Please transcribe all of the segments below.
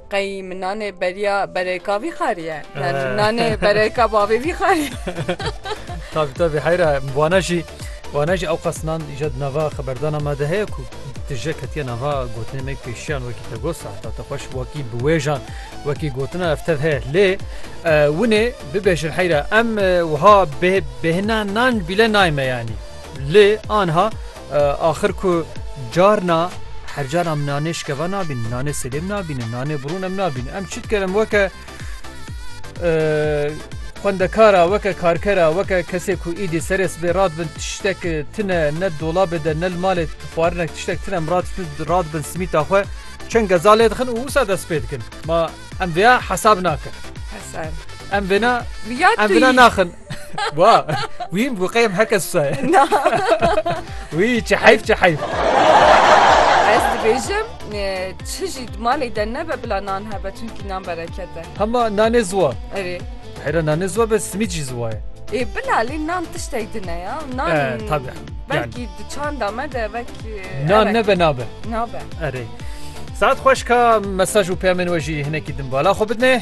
Qey min nanê beriya berêka vî xariye. Yani nanê berêka bavê vî xariye. Tabi tabi heyra wana jî wana jî ewqasnan jed nava xeberdana me de heye ku tije ketiye nava gotinê me pêşiyan wekî te got sahta te xweş wekî bi wêjan wekî gotina ev tev heye lê winê bibêjin heyra em wiha bêhina nan bîle nayme yanî lê anha Axir ku carna her carna em nanê şikeva nabînin, nanê selêm nabînin, nanê birûn em nabînin. Em çi dikin em weke xwendekara, weke karkera, weke kesê ku îdî serê sibê radibin tiştek tune ne dolabê de ne li malê xwarinek tiştek tune em radibin simîta xwe çend geza lê dixin û wisa dest pê dikin. Ma em vêya hesab nakin. Em vêna em vêna naxin. Wa wîn bu qeyem heke saye. Na. Wî çi heyf çi heyf. Ez dibêjim çi jî malê de nebe bila nan hebe çunkî nan bereket e. Hema nanê ziwa. Erê. Hera nanê ziwa be simîd jî ziwa ye. Ê bila lê nan tiştek din e ya. Nan tabi. Belkî di çanda me de belkî. Nan nebe nabe. Nabe. Erê. Saat xweş ka mesaj û peyamên we jî hinekî din bala xwe bidne.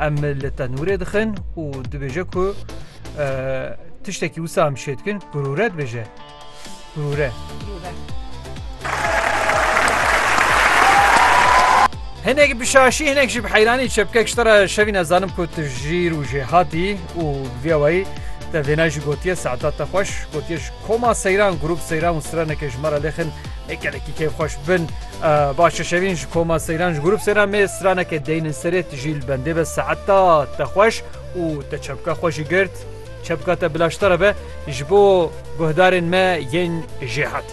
Em li tenûrê dixin û dibêje ku tiştekî wisa em şê dikin kurûre dibêje. Kurûre. Hinek bi şaşî hinek jî bi heyranî çepkek ji te re şevî nezanim ku tu jîr û jê hatî û vê wayî te vêna jî gotiye saeta te xweş gotiye ji koma seyran grûp seyran û straneke ji me re lêxin ê gelekî kêfxweş bin Baş e şevîn ji koma seyran ji grûp seyran mêr straneke deynin serê tu jî li bendê be saeta te xweş û te çepka xwe jî girt çepka te bila ji te re be ji bo guhdarên me yên jêhat.